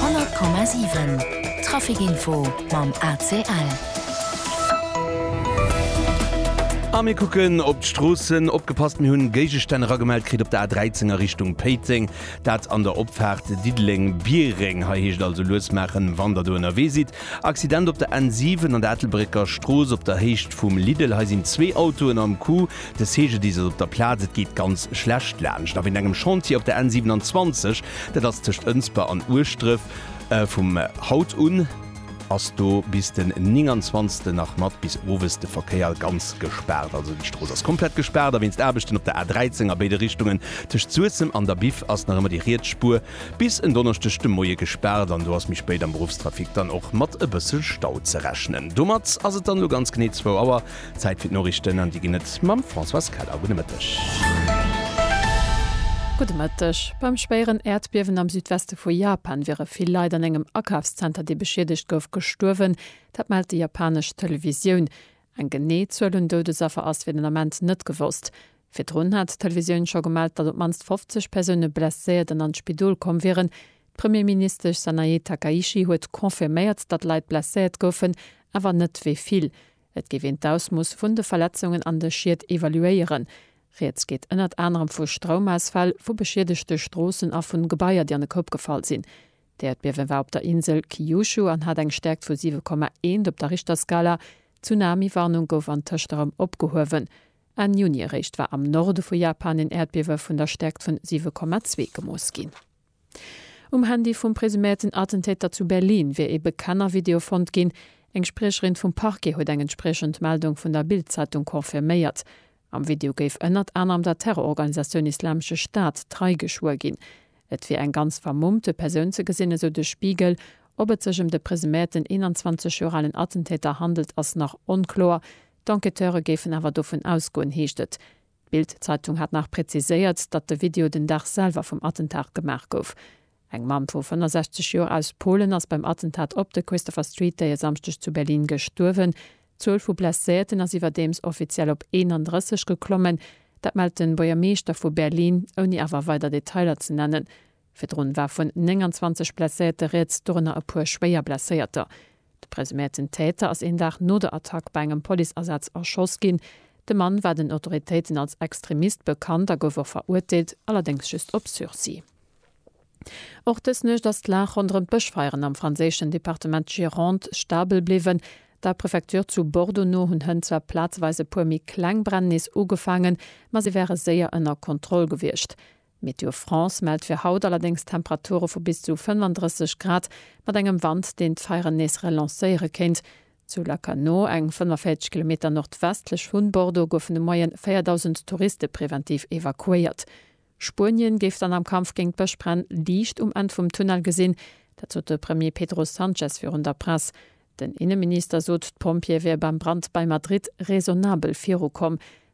100,7 Trafic Info mam ACL. A mir kucken op d'Stroossen. Opgepasst, mir hunn Géigestänn eragemellt kritt op der A13 a Richtung Péiteng. Dat an der Opfaart Diddeleng-Biereng. Hei heescht et also lues maachen, wann Der do ënnerwee sidd. Accident op der N7 an der Ettelbrécker Strooss op der Héicht vum Lidl. Hei sinn zwee Autoen am Coup. De CGDIS ass op der Plaz, et geet ganz schlecht laanscht a wéint engem Chantier op der N 27, dat ass tëscht Ënsber an Ueschdref. Vum haut un ass do bis den 29 nach mat bis owes de Verkéier ganz gespaart. Also déi Strooss ass komplett gespaart a wéinst Aarbechten op der A 13 a béide Richtungen tëscht Suessem an der Biff ass nach ëmmer déi riets Spuer bis en Donneschdeg de Moie gespaart an do ass méi spéit am Beruffstrafic dann och mat e bësse Stau ze rechnen. Domat ass et dann elo ganz genee zwou Auer Zäit fir d'Noriichten an déi ginn et mam Françoise Keller. Gudde Mëtteg. Gudde Mëtteg. Beim schwéieren Äerdbiewen am Südweste vu Japan wiere vill Leit an engem Akafszenter, dee beschiedegt gouf, gestuerwen. Dat mellt déi japanesch Televisioun. Eng genee Zuel un Doudesaffer ass fir den Ament net gewosst. Virdrun hat d'Televisioun scho gemellt, datt op d'mannst 50 Persoune blesséiert an an d'Spidol komm wieren. D'Premierministesch Sanae Takaichi huet confirméiert, datt Leit blesséiert goufen, awer net wéi vill. Et géif een d'Ausmooss vun de Verletzungen an de Schied evaluéieren. Rieds geet ënnert anerem vu Stroumausfäll, vu beschiedegte Stroossen a vun Gebaier, déi an e Koup gefall sinn. D'Äerdbiewen war op der Insel Kyushu an hat eng Stäerkt vu 7,1 op der Richterskala. D'Tsunami-Warnung gouf antëscht erëm opgehuewen. Enn Juni eréischt war am Norde vu Japan een Äerdbiewe vun der Stäerkt vun 7,2 gemooss ginn. Um Handy vum presuméierten Attentäter zu Berlin wier ee Bekennervideo fonnt ginn. Eng Spriecherin vum Parquet huet eng entspriechend Meldung vun der Bild-Zeitung confirméiert. Am Video géif ënnert anerem der Terrororganisatioun Islamesche Staat trei geschwuer ginn. Et wier eng ganz vermummte Persoun ze gesinn, esou de Spiegel. Ob et sech ëm de presuméierten 21 Joer alen Attentäter handelt, ass nach onkloer. D'Enquêteure géifen awer dovun ausgoen, heescht et. D'Bild-Zeitung hat nach präziséiert, datt de Video den Dag selwer vum Attentat gemaach gouf. Eng Mamm vu 65 Joer aus Polen ass beim Attentat op de Christopher Street Day e Samschdeg zu Berlin gestuerwen. D'Zuel vu Blesséierten ass iwwerdeems offiziell op 31 geklommen. Dat mellt de Buergermeeschter vu Berlin, ouni awer weider Detailer ze nennen. Virdrun war vun 29 Blesséierte rieds, dorënner e puer Schwéierblesséierter. De presuméierten Täter ass een Dag no der Attack bei engem Policeasaz erschoss ginn. De Mann war den Autoritéiten als Extremist bekannt a gouf och verurteelt, allerdéngs just op Sursis. Och dës Nuecht ass d'Lag ronderëm d'Bëschfeieren am franséischen Departement Gironde stabel bliwwen. Der Prefecture zu Bordeaux no hunn Hënn zwar plazeweis e puer méi kleng Bränn nees ugefaangen, ma si wäre séier ënner Kontroll gewiescht. Météo France mellt fir haut allerdéngs Temperature vu bis zu 35 Grad mat engem Wand, deen d'Feieren nees relancéiere kéint. Zu Lacanau, eng 45 Kilometer nordwestlech vun Bordeaux, goufen de Moie 4.000 Touriste preventiv evakuéiert. Spuenien géif dann am Kampf géint d'Bëschbränn Liicht um Enn vum Tunnel gesinn. Dat sot de Premier Pedro Sanchez virun der Press. Den Inneminister sot, d'Pompjeeë wiere beim Brand bei Madrid raisonnabel virukomm.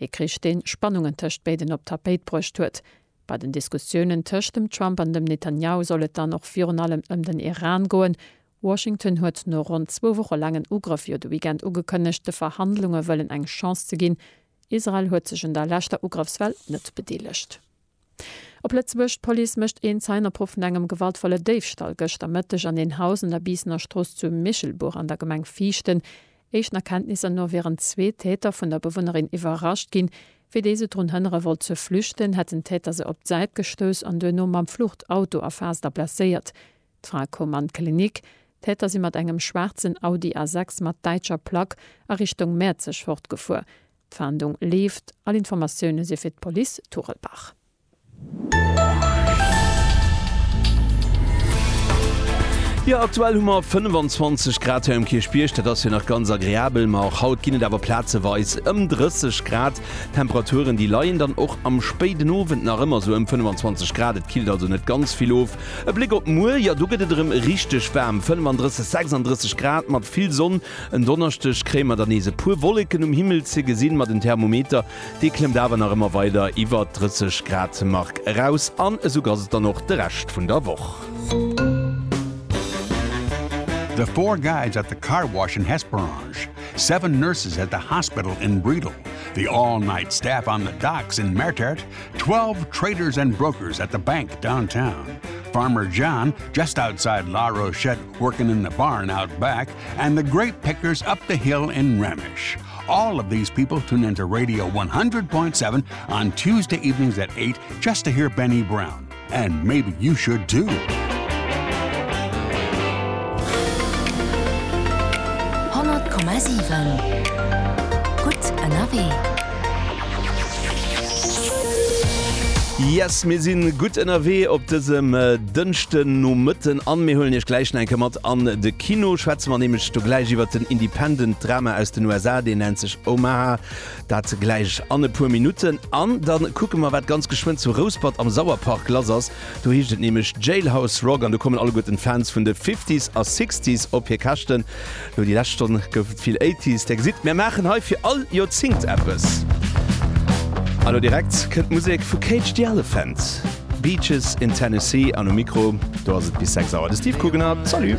Ee Krich, dee Spannungen tëscht béiden op d'Tapéit bruecht huet. Bei den Diskussiounen tëscht dem Trump an dem Netanjahu soll et dann och virun allem ëm den Iran goen. Washington huet no ronn zwou Woche laangen Ugrëff jo de Weekend ugekënnegt, de Verhandlunge wëllen eng Chance ze ginn. Israel huet sech un der leschter Ugrëffswell net bedeelegt. Op Lëtzebuerg, D'Police mécht een Zeienopruff vun engem gewaltvolle Déifstall gëschter Mëtteg an een Haus un der Biissener Strooss zu Michelbuch an der Gemeng Viichten. Éischten Erkenntnisser no wieren zwee Täter vun der Bewunnerin iwwerrascht ginn. Wéi déi se drun hënnere wollt ze flüchten, hätten d'Täter se op d'Säit gestouss an duerno mam Fluchtauto erfaasst a blesséiert. D'Fra koum an d'Klinik. D'Täter si mat engem schwaarzen Audi A6 mat däitscher Plack a Richtung Mäerzeg fortgefuer. D'Fahndung leeft, all Informatioune si fir d'Police Turelbach. Jo, aktuell hu mer 25 Grad hei um Kierchbierg. Dat ass jo nach ganz agreabel, ma och haut ginn et awer plazeweis ëm 30 Grad. Temperaturen, déi leien dann och am spéiden Owend nach ëmmer sou ëm 25 Grad. Et killt also net ganz vill of. E Bléck op muer, jo do gëtt et erëm richteg waarm, 35, 36 Grad mat vill Sonn. En Donneschdeg kréie mer dann nees e puer Wolleken um Himmel ze gesinn, ma den Thermometer, dee klëmmt awer nach ëmmer weider iwwert d'Drësseg-Grad-Mark eraus. An esou ass et dann och de Rescht vun der Woch. The Four Guys at the Car Wash in Hesperange, Seven Nurses at the Hospital in Bredal, The All Night Staff on the Docks in Mertert, Twelve Traders and Brokers at the Bank downtown, Farmer John just outside La Rochette working in the barn out back, And the grape pickers up the hill in Remich. All of these people tune into Radio 100.7 on Tuesday evenings at 8 just to hear Benny Brown. And maybe you should too. Yes mir sinn gutt ënnerwee op dësem äh, dënchten no Mëtten an mir hunn ech gläich enke mat an de Kino schwätze mer nämlech do gläich iwwert den Independent Drama aus den USA, deen nennt sech Omaha, dat gläich an e puer Minutten. An da kucke mer, wat ganz geschwënn zu Rouspert am Sauerpark lass ass. Do heescht et nämlech Jailhouse Rock an do kommen alleguerten d'Fans vun de Fifties a Sixties op hir Käschten. Lo déi lescht Stonn gouf et vill Eighties. Där gesitt, mär maachen hei fir all Joerzingt eppes. A lo direkt kënnt d'Musek vu Cage the Elephant. Beaches in Tennessee an um Mikro do ass et bis 6 Auer de Steve Kugener. Salut!